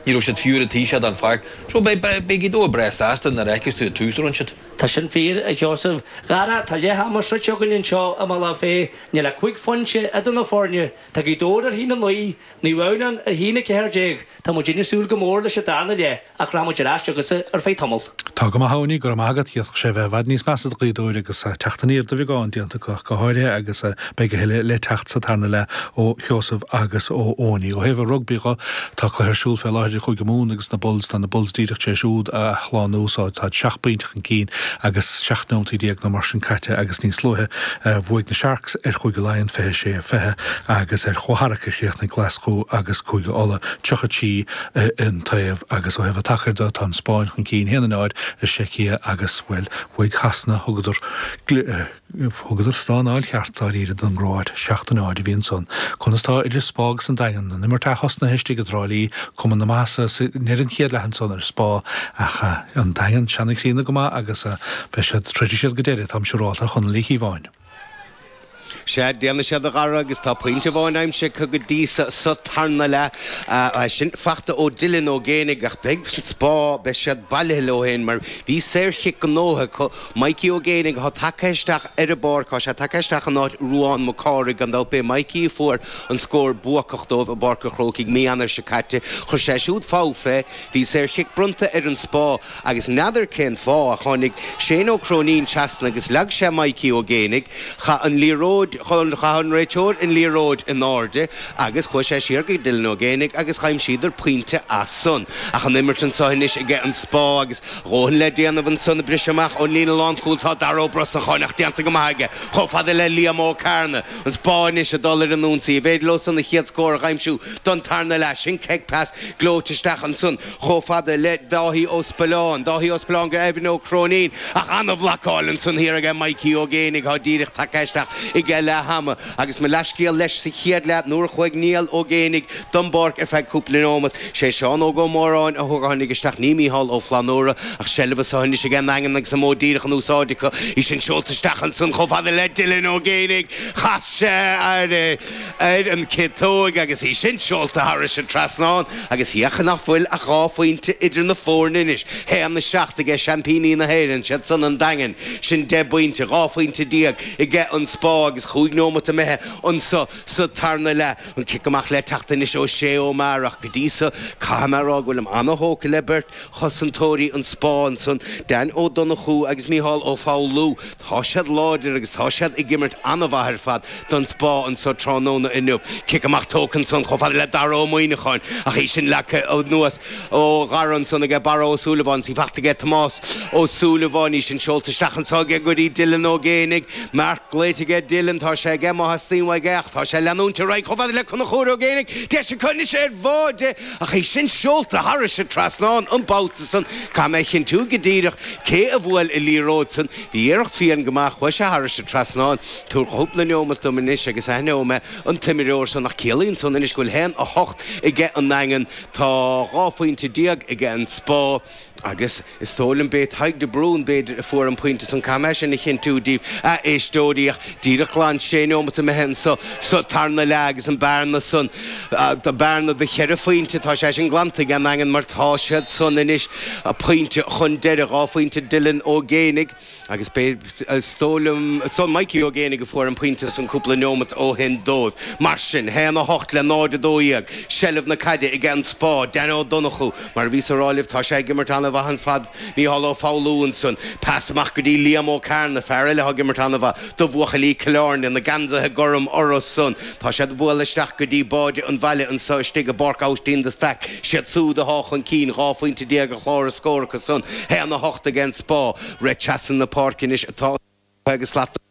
Ní raibh siad fiú ar an taobh sin den pháirc, so beidh Gaoth Dobhair breá sásta nuair a fheicfeas tú an tús a rinne siad. Tá sin fíor, a Sheosaimh. A Dhara, tá leath ama sroichte againn anseo i mBealach Féich. Níl ach cúig phointe idir na foirne. Tá Gaoth Dobhair ar thí na naoi, Naomh Adhamhnáin ar thí na ceathair déag. Tá muid ag súil go mór leis an darna leath ach rachaidh muid ar ais chugatsa ar feadh tamaill. Tá go maith a Eoiní, go raibh maith agat, d'fhéadfadh sé bheith i bhfad níos measa do Ghaoth Dobhair agus teacht aniar de bheagán déanta acu ach go háirithe agus beidh a thuilleadh le teacht sa tarna leath ó Sheosamh agus ó Eoiní. Ó thaobh an rugbaí dho, tá cluiche ar siúl fé láthair idir Chúige Mumhan agus na Bulls, tá na Bulls díreach tar éis úd a shlánú, táid seacht bpointe chun cinn agus seacht nóimintí déag nó mar sin caite agus níos luaithe bhuaigh na Sharks ar Chúige Laighean 26, 20 agus ar chomharaíocht a chríochnaigh Glaschú agus Cúige Uladh 30 trí AN taobh, Agus ó thaobh an tsacair do, tá an Spáinn chun cinn, 1 in aghaidh náid ag an tSeicia agus, bhuel, bhuaigh Sasana, thugadar, thugadar steáráil cheart, dáiríre, don gCróáit, 7, náid a bhí ansan. Conas tá idir Spá agus an Daingean? An imirt athosnaithe istigh i dTrá Lí, chuma ana-mhaith sa, sa, ndeireadh an chéad leath ansan ar Spá, ach an Daingean, seanchríonna go maith agus beidh siad, troidfidh siad go deireadh, táimse ráite, Chonall Uí Chíobháin. Sea, déanfaidh siad a Dhara agus tá pointe amháin aimsithe acu go dtí so sa tarna leath. San fachta ó Dylan Ó Géinigh ach beidh an Spá, beidh siad bailithe leo féin mar bhí saor-chic gnóite acu. Mikey Ó Géinigh atá tagtha isteach ar an bpáirc. Tá sé tagtha isteach in áit Ruán Mac Cárthaigh gan dabht. B'é Mikey a fuair an scór buacach dóibh i bPáirc an Chrócaigh mí Eanáir seo caite. Chuir sé siúd fód fé. Bhí saor-chic bronnta ar an Spá. Agus n'fheadar cén fáth ach tháinig Shane Ó Cróinín trasna agus leag sé Mikey Ó Géinigh, chaith an liathróid, chaith an réiteoir an liathróid in airde agus chuaigh sé siar go Dylan Ó Géinigh agus dh'aimsíodar pointe as san. Ach an imirt anseo anois aige an Spá agus a dhóthain le déanamh anso ag briseadh amach ón líne lánchúil tá Dara Ó Brosnacháin ach déanta go maith aige chomh fada le Liam Ó Cearna. An Spá anois ag dul ar an ionsaí. An bhféidir leosan a chéad scór a dh'aimsiú don tarna leath? Sin kick pass gleoite isteach ansan. chomh fada le Dáithí Ó Spealláin, Dáithí Ó Spealláin go Eimhin Ó Cróinín, ach an-bhlacáil ansan thiar aige Maidhcí Ó Géinigh thá díreach tagtha isteach aige leath-ama agus mo leathscéal leis sa chéad leath nuair a chuaigh Niall Ó Géinigh don bpáirc ar feadh cúpla neomat. Sé Seán Óg Ó Móráin a thug a tháinig isteach ní Micheál Ó Flannúra ach seilbh arís anois aige an nDaingean agus an modh díreach in úsáid acu í sin seolta isteach ansan chomh fada le Dylan Ó Géinigh. Chas sé air é. ar an gciotóig agus í sin seolta thairis an trasnán agus fágann san nach bhfuil ach dhá phointe idir na foirne anois. hAon a seacht age seaimpíní na hÉireann, 'sé san an Daingean. Sin deich bpointe, dhá phointe déag age an Spá agus chúig neomat imithe anso sa tarna leath. An cic amach le teacht anois ó Shé Ó Meara ach go dtí so caithfidh mé a rá go bhfuilim ana-thógtha le beirt chosantóirí an Spá ansan, Dan Ó Donnchú agus Micheál Ó Foghlú. Tá siad láidir agus tá siad ag imirt an-mhaith ar fad don Spa anseo tráthnóna inniu. Cic amach tógtha ansan chomh fada le Dara Ó Muíneacháin ach í sin leagtha anuas ó Dhara ansan aige Barra Ó Súilleabháin is í faighte aige Tomás Ó Súilleabháin, í sin seolta isteach anso aige go dtí Dylan Ó Géinigh. Marc glaoite aige Dylan, tá sé aige má theastaíonn uaidh é ach tá sé ag leanúint ar aghaidh chomh fada le Conchúir Ó Géinigh, deis acu anois ar bháide! Ach é sin seolta thairis an trasnán an babhta san, caithfidh mé a chinntiú go díreach cé a bhuail an liathróid san. Bhí iarracht fiáin go maith, chuaigh sé thairis an trasnán. Tabhair cúpla neomat dom anois agus aithneoidh mé an t-imreoir san. Ach ciallaíonn san anois go bhfuil haon a hocht aige an Daingean. Tá dhá phointe déag aige an Spa agus. Is dóigh liom b'é Tadhg de Brún, b'fhéidir, a fuair an pointe san caithfidh mé é sin a chinntiú díbh, a éisteoirí, ach díreach glan sé neomat imithe anso sa tarna leath agus an bearna san, an bearna do cheithre phointe, tá sé sin glanta ag an nDaingean mar tá siad anois pointe chun deiridh, dhá phointe Dylan Ó Géinigh. Agus b'é, is dóigh liom, Mikey Ó Géinigh a fuair an pointe san cúpla neomat ó shin dóibh. Mar sin, haon a hocht le náid a dó dhéag, seilbh na caide aige an Spa. Danny Ó Donnchú, mar a bhíos a rá libh, tá sé ag imirt an-mhaith ar fad. Micheál Ó Foghlú ansan. Pas amach go dtí Liam Ó Cearnaigh, fear eile atá ag imirt an-mhaith do bhuachaillí Chill Airne, na geansaithe gorm orthu san. Tá siad ag bualadh isteach go dtí báide an bhaile anso istigh i bpáirc Aibhistín de Staic. Is iad súd atá chun cinn, dhá phointe déag ar chlár na scór acu san. Haon a hocht aige an Spa. Rith trasna na páirce anois atá an cluiche agus slat na muice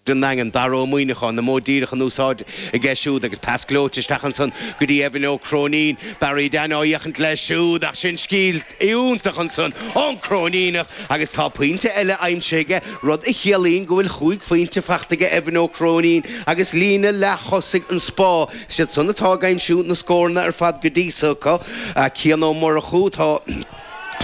ar an nDaingean. Dara Ó Muíneacháin, na bóithre díreach in úsáid aige siúd agus pas gleoite isteach ansan go dtí Evan Ó Cróinín. Barry Dan ag féachaint leis siúd ach sin scil iontach ansan ón gCróiníneach agus tá pointe eile aimsithe aige. rud a chiallaíonn go bhfuil chúig phointe faighte aige Evan Ó Cróinín agus líne leath-thosaigh an Spa, is iad san atá ag aimsiú na scóranna ar fad go dtí so acu. Cian Ó Murchú, tá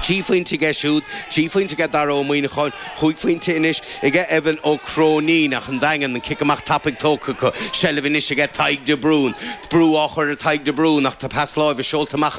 trí phointe aige siúd, trí phointe aige Dara Ó Muíneacháin, chúig phointe anois aige Evan Ó Cróinín ach an Daingean, an cic amach tapaidh tógtha acu, seilbh anois aige Tadhg De Brún, brú á chur ar Thadhg De Brún ach tá pas láimhe seolta amach